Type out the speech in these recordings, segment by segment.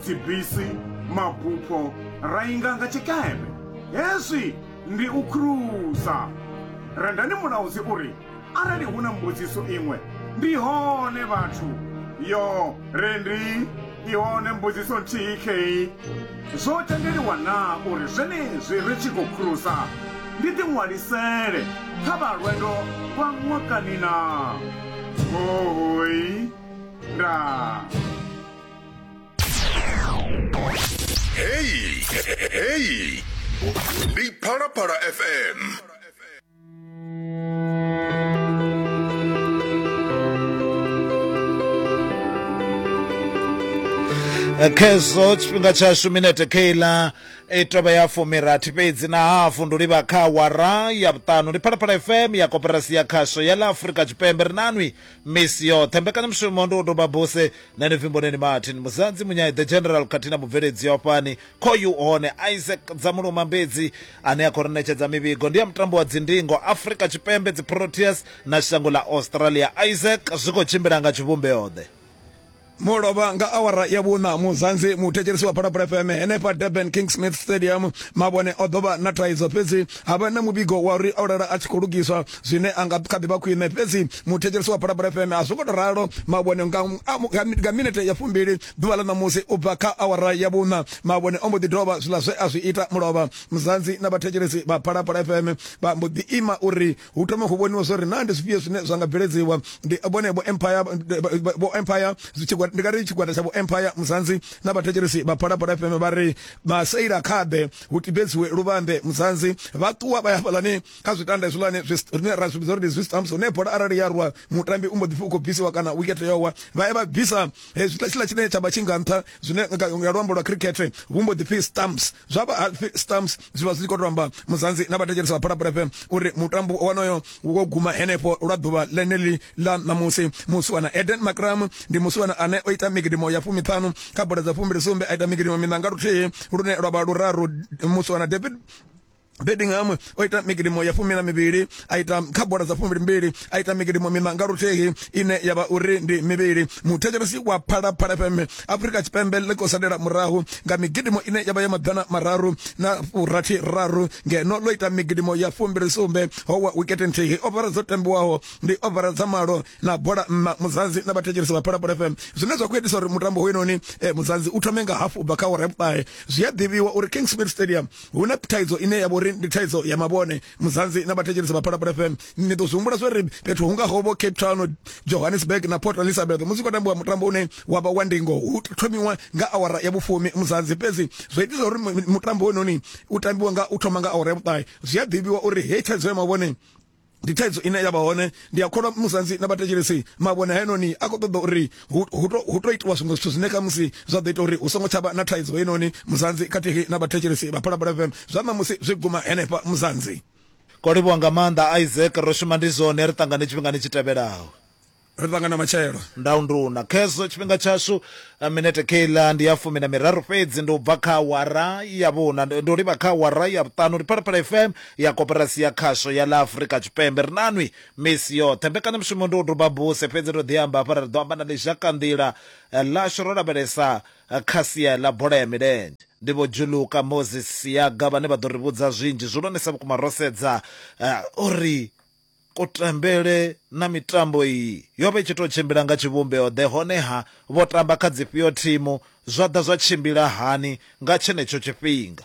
dzibisi, mabupho ra inga nga tshikepe. Hezwi ndi u khulusa. Rendani Mulaudzi u ri, Arali hu na mbudziso iṅwe, ndi hone vhathu. Yo, Rendi, i hone mbudziso nthihi khei. Zwo tendeliwa naa uri zwenezwi ri tshi khou khulusa ndi ḓiṅwalisele kha vha lwendo lwa ṅwakani naa? Hoooi. Ndaa. Hey, hey. Ndi Phalaphala FM. khezo tshifhinga tshashu minete kheila i tovha ya fumirathi fhedzi na hafu ndo livha kha wara ya vhuṱanu ndi phalaphala fm ya koperasi ya khasho ya ḽa afurika tshipembe ri nanwi misi yoṱhe mbekanyamushumo ndi u doba buse Nṋe ndi pfi Mboneni Martin Muzanzi Munyai the General khathihi na mubveledzi wa fhani kho you hone Isaac Dzamuluma Mbedzi ane a khou ri ṋetshedza mivhigo ndi ya mutambo wa dzindingo Afrika Tshipembe dzi Proteas na shango ḽa Australia. Isaac, zwi khou tshimbila nga tshivhumbeoḓe. Mo lovha nga awara ya vhuṋa. Muzanzi Muthetshelesi wa Phalaphala FM henefha Durban King Smith Stadium Mabone o ḓo vha na thaidzo fhedzi Ha vha na muvhigo wa uri o lala a tshi khou lugiswa, zwine a nga kha ḓi vha khwine. Fhedzi muthetshelesi wa Phalaphala FM a zwo ngo tou ralo. Mavhone nga, nga minete ya fumbili ḓuvha ḽa ṋamusi u bva kha awara ya vhuṋa, Mavhone o mbo ḓi dovha zwiḽa zwe a zwi ita mulovha. Muzanzi na vhathetshelesi vha Phalaphala FM vha mbo ḓi ima uri hu thome hu vhoniwe zwo ri naa ndi zwifhio zwine zwa nga bveledziwa. Ndi vhone vho Empire, vho Empire, ndi nga ri tshigwada tsha vho Empire, Muzanzi na vhathetshelesi vha Phalaphala FM vha ri, Maseila kha ḓe. hu tibedziwe luvhambe mudzanzi vha ṱuwa vha ya hafhaḽani kha zwitanda hezwiḽani zwine ra zwi vhidza uri ndi zwi stamps hune bola arali ya rwa mutambi u mbo ḓi pfhi u khou bvisiwa kana wikete yo wa vha ya vha bvisa hezwiḽa tshiḽa tshine tsha vha tshi nga nṱha zwine nga luambo lwa khirikhethe vhu mbo ḓi pfhi stamps zwa vha pfhi stamps zwi vha zwi tshi khou tou amba mudzanzi na vhathetshelesi vha phalaphala fm uri mutambo wonoyo hu khou guma henefho lwa ḓuvha ḽeneḽi ḽa ṋamusi musiwana eden macram ndi musiwana ane o ita migidimo ya fumiṱhanu kha bola dza fumbili sumbe a ita migidimo miṋa nga luthihi lune lwa vha luraru musiwana david bedingham o ita migidimo ya fumi na mivhili a ita kha bola dza fumi mbili a ita migidimo miṋa nga luthihi ine ya vha uri ndi mivhili muthetshelesi wa phalaphala fm Afrika Tshipembe ḽi khou salela murahu nga migidimo ine ya vha ya maḓana mararu na furathi raru ngeno ḽo ita migidimo ya fumbili sumbe howa wikete nthihi ovara dzo tambiwaho ndi ovara dza malo na bola nna muzanzi na vhathetshelesi vha phalaphala fm zwine zwa khou itisa uri mutambo hoyunoni eh, muzanzi u thome nga hafu u bva kha awara ya vhuṱahe zwi a ḓivhiwa uri king smith stadium hu na thaidzo ine ya vha uri ndi thaidzo ya mavhone muzanzi na vhathetshelesi vha phalaphala fm ni ḓo zwi humbula zwo ri fhethu hu ngaho vho cape town johannesburg na port elizabeth musi khou tambiwa mutambo une wa vha wa ndingo hu thomiwa nga awara ya vhufumi muzanzi fhedzi zwo itisa uri mutambo wenoni u tambiwa nga u thoma nga awara ya vhuṱahe zwi a ḓivhiwa uri hei thaidzo ya mavhone ndi thaidzo ine ya vha hone ndi a kholwa musanzi na vhathetshelesi mavhone haenoni a khou ṱoḓa uri hu, hu, to, hu to itiwa zwiṅwe zwithu zwine khamusi zwa ḓo ita uri hu songo tsha vha na thaidzo heinoni muzanzi khathihi na vhathetshelesi vha phalaphala fm zwa ṋamusi zwi guma henefha muzanzi ko livhuwa nga maanḓa isaac ro shuma ndi zwone ri ṱangane tshifhingani tshi tevhelaho ri ṱangana matshelo ndau nduna khezwo tshifhinga tshashu eh, minete keiḽa ndi ya fumi na miraru fhedzi ndi u bva kha awara ya vhuna ndi ndi u livha kha awara ya vhuṱanu ndi phalaphala fm ya koporasi ya khasho ya ḽa afurika tshipembe ri nanwi Misi yoṱhe mbekanyamushumo ndi u duba buse, fhedzi ndo ḓi amba hafha ri ḓo amba na ḽizhakanḓila ḽashu ro lavhelesa kha sia ḽa bola ya milenzhe. Ndi Vho Juluka Moses Siyaga vhane vha ḓo ri vhudza zwinzhi zwihulwanesa vhukuma ro sedza uri kutambele na mitambo iyi yo vha i tshi tou tshimbila nga tshivhumbeo-ḓe, honeha vho tamba kha dzifhio thimu, zwa ḓa zwa tshimbila hani nga tshenetsho tshifhinga.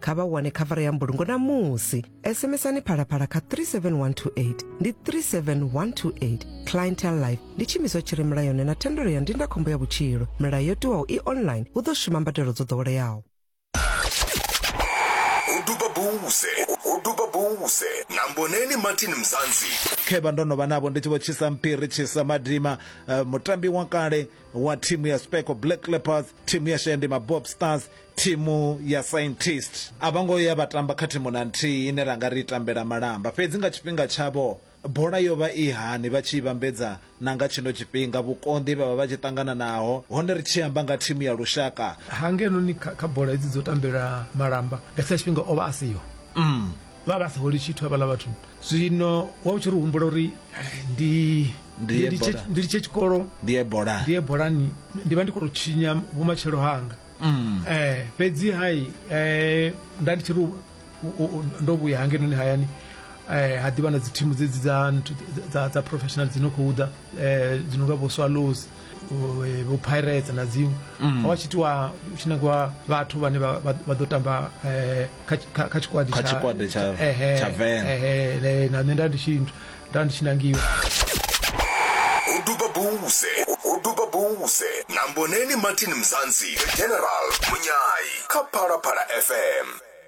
kha vha wane khavara ya mbulungo na musi sms-ani phalaphala kha 37128 ndi 37128 clientel life ndi tshiimiswa tshi re mulayoni na thendelo ya ndindakhombo ya vhutshilo milayo yo tiwaho i online hu ḓo shuma mbadelo dzo ḓoweleaho uduba buze uduba buze na mboneni martin mzanzi khevha ndo no vha navho ndi tshi vho tshisa mpiri tshisa madima uh, mutambi wa kale wa thimu ya speco black leopards thimu ya shandima bob stars Thimu ya Scientist a vho ngo ya vha tamba kha thimu na nthihi ine ra nga ri i tambela malamba. Fhedzi nga tshifhinga tshavho, bola yo vha i hani vha tshi i vhambedza na nga tshino tshifhinga, vhukonḓi he vha vha vha tshi ṱangana naho, hone ri tshi amba nga thimu ya lushaka? Ha, ngeno kha bola hedzi dzo tambela malamba, nga tshiḽa tshifhinga o vha a siho. Umm. Vha vha sa holi tshithu havhaḽa vhathu. Zwino wa u tshi ri humbula uri ndi ndi litshe tshikolo, ndi ye bolani, ndi vha ndi khou tou tshinya vhumatshelo hanga. eh fhedzi hai eh nda ndi tshi ri u- u- u- ndo vhuya hangenoni hayani eh ha ḓivha na dzi thimu dzedzi dza nthu- dza dza professional dzi no khou ḓa eh dzi no nga vho swallows vho- eh, vho pirates na dziṅwe ho vha tshi itiwa hu tshi nangiwa vhathu vhane vha vha- vha ḓo tamba eh kha kha- kha tshikwadi Kha tshikwadi tsha- ehe, tsha Venḓa. ehe, le- na nṋe nda ndi tshi nda ndi tshi nangiwa Hoduba Bouze Hoduba Bouze na Mboneni Martin Mzansi the General Munyai kha Phalaphala FM.